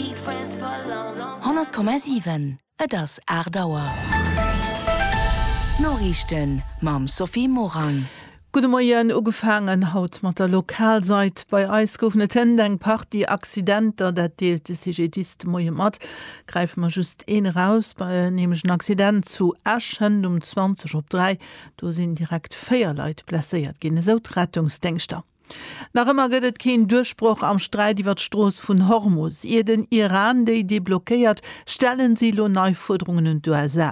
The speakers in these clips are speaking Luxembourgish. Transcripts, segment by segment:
100,7 Et ass 8 Auer. D'Noriichten mam Sophie Morang. Gudde Moien. Ugefaangen haut mat der Lokalsait. Bei eis goufen et hënt eng Partie Accidenter. Dat deelt de CGDIS de Moie mat. Gräife mer just een eraus, nämlech en Accident zu Esch hënt um 20 op 3. Do sinn direkt 4 Leit blesséiert ginn, esou d'Rettungsdéngschter. Nach ëmmer gëtt et keen Duerchbroch am Sträit iwwer d'Strooss vun Hormus. Ier den Iran déi deblockéiert, stellen si elo nei Fuerderungen un d'USA.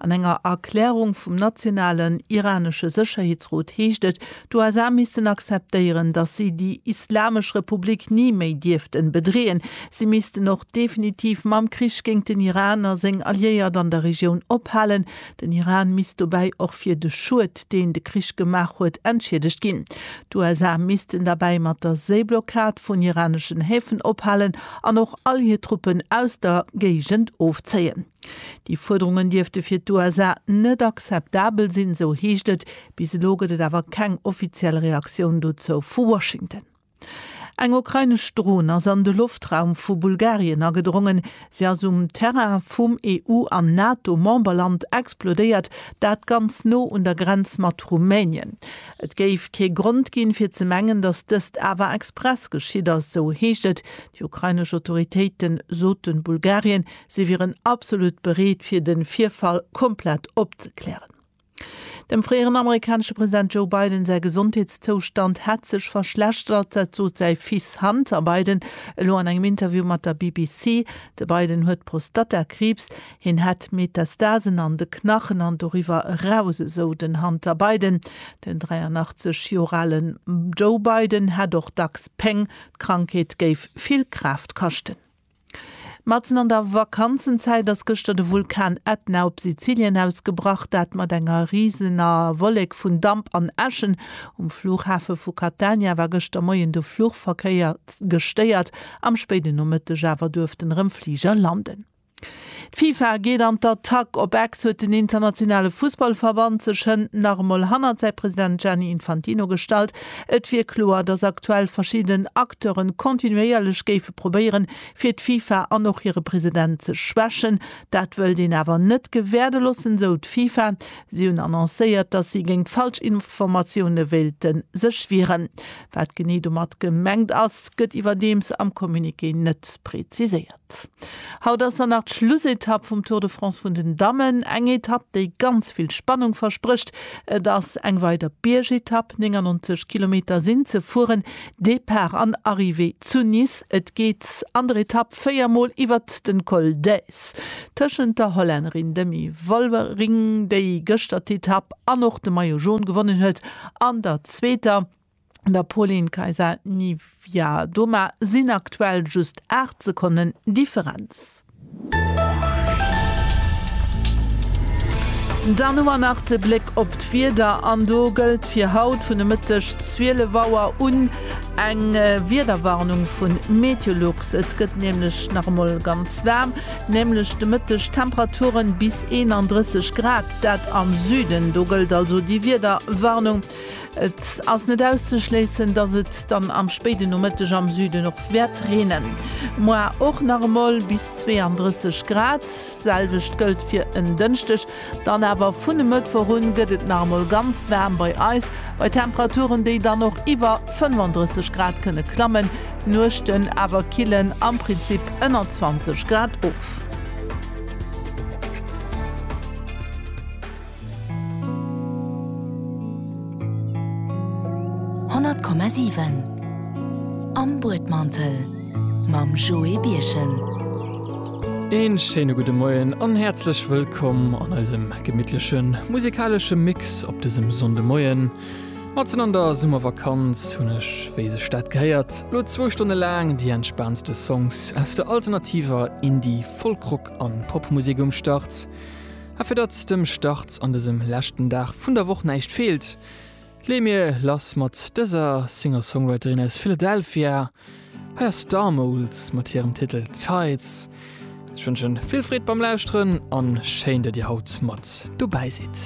An enger Erklärung vum nationalen iranesche Sécherheetsrot heescht et, d'USA missten akzeptéieren, datt si déi Islamesch Republik ni méi dierften bedreeën. Si missten och definitiv mam Krich géint den Iran a seng Alliéiert an der Regioun ophalen. Den Iran misst dobäi och fir de Schued, deen de Krich gemaach huet, entschiedegt ginn. D'USA missten derbäi mat der Séiblockad vun iraneschen Häfen ophalen an och all hir Truppen aus der Géigend ofzéien. Déi Fuerderungen dierfte fir d'USA net akzeptabel sinn, sou heescht et. Bis elo gëtt et awer keng offiziell Reaktioun dozou vu Washington. Eng ukrainesch Dron ass an de Loftraum vu Bulgarien agedrongen. Si ass um Terrain vum EU an NATO-Memberland explodéiert, dat ganz no un der Grenz mat Rumänien. Et géif kee Grond ginn, fir ze mengen, datt dëst awer express geschitt ass, sou heescht et. Déi ukrainesch Autoritéite soten, Bulgarien si wieren absolut bereet, fir de Virfall komplett opzeklären. Dem fréieren amerikanesche President Joe Biden säi Gesondheetszoustand hätt sech verschlechtert, dat sot säi Fils Hunter Biden elo an engem Interview mat der BBC. De Biden huet Prostatakriibs. Hien hätt Metastasen an de Knachen an doriwwer eraus, esou den Hunter Biden. Den 83 Joer ale Joe Biden hätt och dacks Péng. D'Krankheet géif vill Kraaft kaschten. Matzen an der Vakanzenzäit ass gëschter de Vulkan Ätna op Sizilien ausgebrach, dat mat enger risener Wollek vun Damp an Äschen. Um Flughafe vu Catania war gëschter Moien de Fluchverkéier gestéiert, am spéiden Nomëtteg awer duerften erëm Fliger landen. D'FIFA geet an d'Attack, op Ex huet den internationale Fussballverband sech hënt nach emol hannert säi President Gianni Infantino gestallt. Et wier kloer, datt aktuell verschidden Acteure kontinuéierlech géife probéieren, fir d'FIFA an och hire President ze schwächen. Dat wëllt een awer net gewäerde loossen, sou d'FIFA. Si hunn annoncéiert, datt si géint falsch Informatioune wéilte sech wieren. Wat genee domat gemengt ass, gëtt iwwerdeems am Communiqué net preziséiert. Haut ass dann nach d'Schlussetapp vum Tour de France vun den Dammen. Eng Etapp, déi ganz vill Spannung versprécht. Et ass eng weider Biergetapp, 99 Kilometer sinn ze fueren, Depart an Arrivée zu Nice. Et geet an der Etapp véier Mol iwwert den Col d'Èze tëschent der Hollännerin Demi Vollering, déi gëschter d'Etapp an och de Maillot Jaune gewonnen huet, an der zweeter. der Pauline Kaisa-Nivia Doma sinn aktuell just 8 Sekonnen Differenz. Dann hu mer nach de Bléck op d'Wieder an do gëllt fir haut vun de Mëtteg 12 Auer un eng Wiederwarnung vu Meteolux. Et gëtt nämlech nach emol ganz waarm, nämlech de Mëtteg Temperature bis 31 Grad, dat am Süden. Do gëllt also déi Wiederwarnung. Et ass net auszeschléissen, dass et dann am spéiden Nomëtteg am Süden och wäert reenen. Moar och nach emol bis 32 Grad. Selwecht gëllt fir en Dënschdeg. Dann awer vun e Mëttwoch un gëtt et nach emol ganz waarm bei eis, bei Temperaturen, déi dann och iwwer 35 Grad kënne klammen. D'Nuechten awer killen am Prinzip ënner 20 Grad of. 100,7 Am Buedmantel mam Joé Birchen. Een schéine gudde Moien an häerzlech wëllkomm an eisem gemittlechen musikalesche Mix op dësem Sonndemoien. Matzen an der Summervakanz hunn ech, wéi sech dat gehéiert, lo zwou Stonne laang déi entspaantste Songs aus der alternativer Indie-, Folk-, Rock an Popmusek um Start. A fir datt dem Start an dësem leschten Dag vun der Woch näischt feelt, leeë mir lass mat dëser Singer-Songwriterin aus Philadelphia. Hei ass Starmoles mat hirem Titel Tides. Ech wënschen vill Freed beim Lauschteren an schéin, datt dir haut mat dobäi sidd.